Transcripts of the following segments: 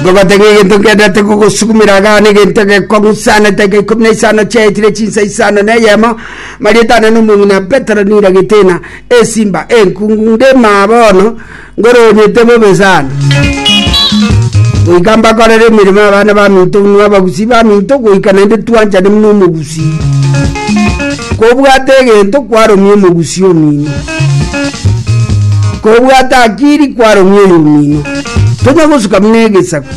Ngobatebia egento ngenderete kogosukumera iga na egento egekong'u sana edaika ikomi na isano chiaetire chinsa isano na eyemo marieta ane na omong'ina Petero nira getena esimba enkungu ndemaa bono ngoronyete bobe sana goika mbakorere emeremo abana baminto buna abagusi baminto goika naende twanchane buna omogusi kobwate egento kwaromia omogusi omino kobwate akiri kwaromia oyo omino tonya gosuka buna egesaku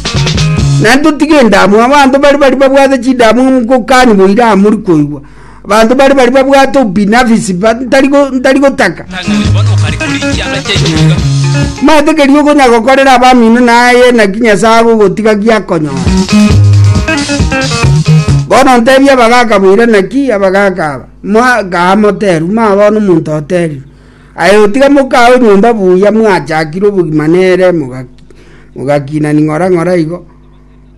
na totige endamu abanto bari bari babwate chidamu omokokani boira amori koigwa abanto bari bari babwate obinafisi ba- ntari go- ntari gotaka mate kerio okonya gokorera abamino naye naki nyasaye agogotiga giakonyora bono ntebia abagaka boira naki abagaka aba mwa- gaa moteru mabona omonto oterire Aye otiga mokae orumbe buya mwachakire obogima nere mogakina ning'ora ng'ora igo,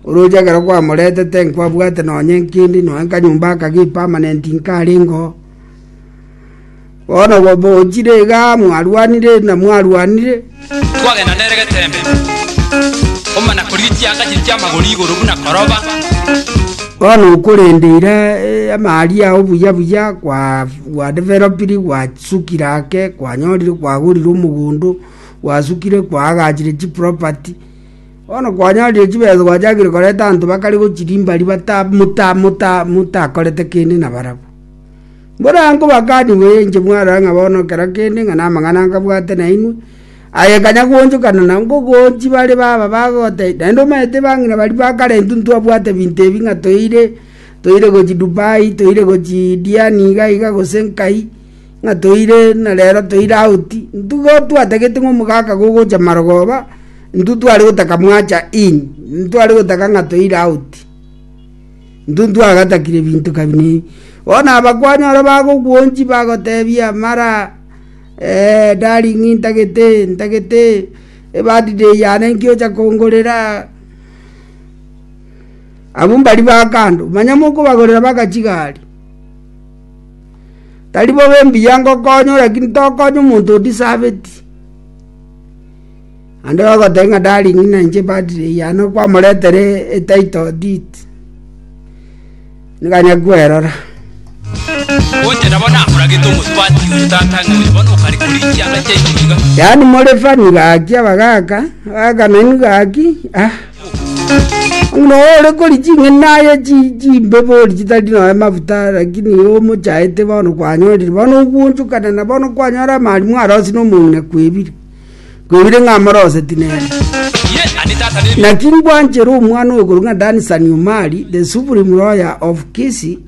oroche ekero kwamoretete nkwabwate nonye nkindi nonye nkanyomba aka gi permanent nkarengeo. Bono bochire igaa mwarwanire na mwarwanire. Twagenda nere geteembe, komana korigia chianga chiria chi'amagori igoro buna koroba. Bono okorendeire amaaria ao buya buya gwadevelopiri gwasukire ake kwanyorire kwagorire omogondo gwasukire kwaagachire chiproperty bono kwanyorire chibesa gwachakire koreta abanto bakare gochirimbari motakorete kende nabarabwo. Borango bakaniwe inche mwarora ng'a bono kera kende ng'a namang'ana nkabwate nainwe, aye kanya goonchokana na ngogoonchi bare baba bagotebi, naende omanyete bang'ina baria ba kare intwe ntwabwate binto ebi ng'a toire toire gochia Dubai, toire gochia Diani iga iga gose nkai, ng'a toire na rero toire out. Intwe igo twatagete ng'a omogaka gogocha marogoba, intwe tware gotaka mwacha in, ntware gotaka ng'a toire out. Ntuntu agatakire binto kabinii. Bono abakuani ore bagogwonchi bagotebia mara, Ee, darling, ntagete, ntagete, ebirthday yane nki ocha kongorera? Abwo mbari ba kando, manya mokobagorera baka chigari. Tari bobe mbuya ngokonywa, lakini tokonya omonto o deserve it. Naende bagoteba ng'a Darlin na inche padri eyano kwamoretere etitle deed, niga nyakwerora. Gocha nabo nakoragete omosubati oyo tata ng'a oyo bono okare korigia anga chiaito iga. Yaani more funny gaki abagaka, abagaka nainwe gaki, ah. Ng'ina oyo ore kori ching'eni aye chi chimbe bori chitari noe mafuta lakini oyo omochaete bono kwanyorire. Bono ogonchokana na bono kwanyora amarimu arosie na omong'ina kwebire. Kwebire ng'a amoroseti nere. Naki ngwanchere omwana oyo korwa ng'a Dan Saniumari, the supreme lawyer of Kisii,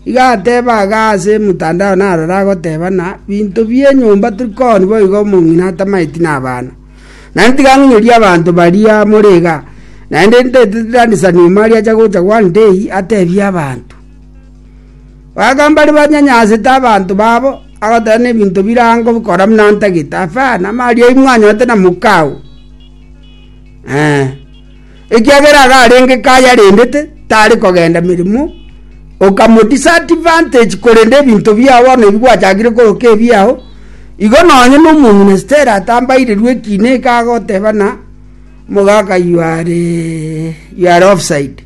iga ateba aga ase mtandao narora agoteba na binto bienyomba tiri koni boigo omong'ina atamaeti na abana. Naende tiga ng'inyorie abanto baria more iga. Naende ntaetete Dan Saniumari acha gocha one day atebie abanto. Bagamba aria banyanyansete abanto babo, agateba nebinto bire ango bikora buna ntagete, Afa, namaria imwe anyorete na mokao, ekiagera iga arenge kaya arendete, tare kogenda meremo, okamo disadvantage korende ebinto biao bono ebi gwachakire koroka ebiao, igo nonye na omong'ina Stella atambairirwe ekina eke agoteba buna, omogaka you are you are offside.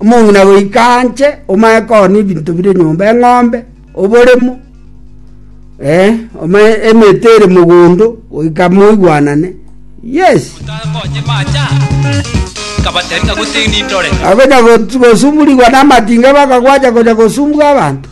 Omong'ina goika anche omae koona ebinto bire nyomba, eng'ombe, oboremo, eh, omae emete ere mogondo, goika moigwanane. Yes. Takonye macha nkabatebi ng'a gose nindore. Akonya gosu- gosuburigwa namatinga bakagwacha konya gosumbwa abanto.